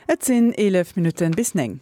Et sinn 11 Minutten bis 9.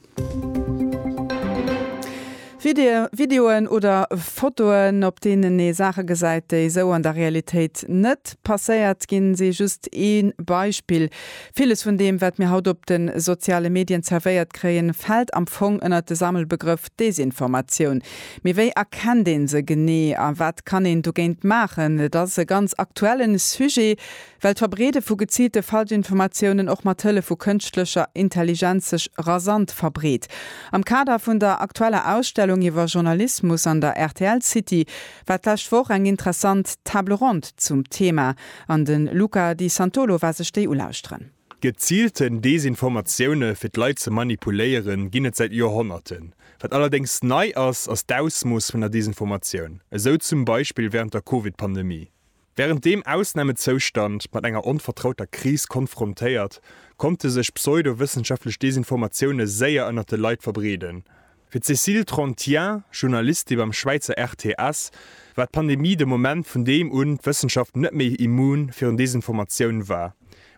Videoen oder Fotoen, op deenen ee Saache gesäit, déi esou an der Realitéit net passéiert ginn, si just ee Beispill. Villes vun deem, wat mir haut op de soziale Medien zerwéiert kréien, fält am Fong ënnert de Sammelbegrëff Desinformatioun. Mee wéi erkennt ee se genee a wat kann een dogéint maachen? Et ass e ganz aktuellen Sujet. Well d'Verbreede vu geziilte Falschinformatiounen och mat Hëllef vu kënschtlecher Intelligenz sech rasant verbreet. Am Kader vun der aktueller Ausstellung iwwer Journalismus an der rtl City war d'lescht Woch eng interessant Table ronde zum Thema an de Luca Di Santolo war sech déi ulauschteren. Geziilten Desinformatioune fir d'Leit ze manipuléieren, ginn et säit Joerhonnerten. Wat allerdéngs nei ass, ass d'Ausmooss vun der Desinformatioun, esou zum Beispill wärend der Covid-Pandemie. Wärend deem Ausnamezoustand mat enger onvertrauter Kris konfrontéiert, konnte sech pseudo-wëssenschaftlech Desinformatioune séier ënnert de Leit verbreeden. Fir d'Cécile Trantien, Journalistin beim Schwäizer RTS, war d'Pandemie de Moment, vun deem un d'Wëssenschaft net méi immun virun Desinformatioun war,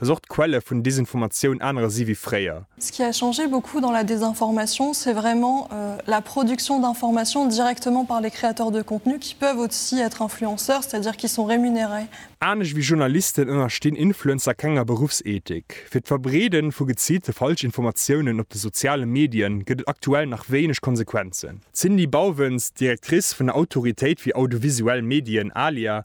dass och d'Quelle vun Desinformatioun anere si wéi fréier. Ce qui a changé beaucoup dans la désinformation, c'est vraiment la production d'information directement par les créateurs de contenus qui peuvent aussi être influenceurs, c'est-à-dire qui sont rémunérés. Anescht wéi Journalisten ënnerstinn Influencer kenger Beruffsethik. Fir d'Verbreede vu geziilte Falschinformatiounen op de soziale Medie gëtt et aktuell nach wéineg Konsequenzen. D'Cindy Bauwens, Directrice vun der Autoritéit fir audiovisuell Medien, ALIA,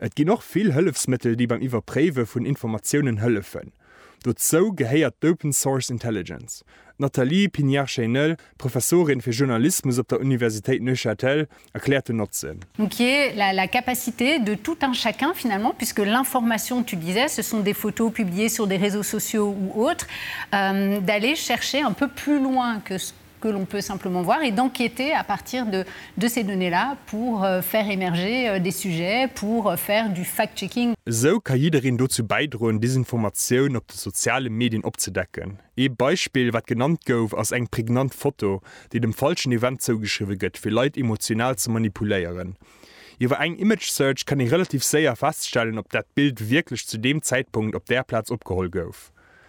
Et ginn och vill Hëllefsmëttel déi beim Iwwerpréiwe vun Informatiounen hëllefen. Dozou gehéiert d'Open Source Intelligence. D'Nathalie Pignard-Cheynel, Professorin fir Journalismus op der Universitéit Neuchâtel, erkläert den Notzen. Donc qui est la la capacité de tout un chacun finalement puisque l'information, tu disais, ce sont des photos publiées sur des réseaux sociaux ou autres, d'aller chercher un peu plus loin que ce que l'on peut simplement voir et d'enquêter à partir de de ces données-là pour faire émerger des sujets, pour faire du fact-checking. Esou ka jiddereen dozou bäidroen, Desinformatioun op de soziale Medien opzedecken. Ee Beispill, wat genannt gouf, ass eng prägnant Foto, déi dem falschen Event zougeschriwwe gëtt, fir Leit emotional ze manipuléieren. Iwwer eng Image Search kann ee relativ séier feststellen, ob dat Bild wierklech zu deem Zäitpunkt op där Plaz opgeholl gouf.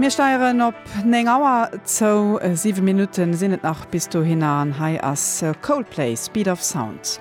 Mir steieren op 9 Auer zou, 7 Minutten sinn et nach bis dohinner an hei ass Coldplay Speed of Sound.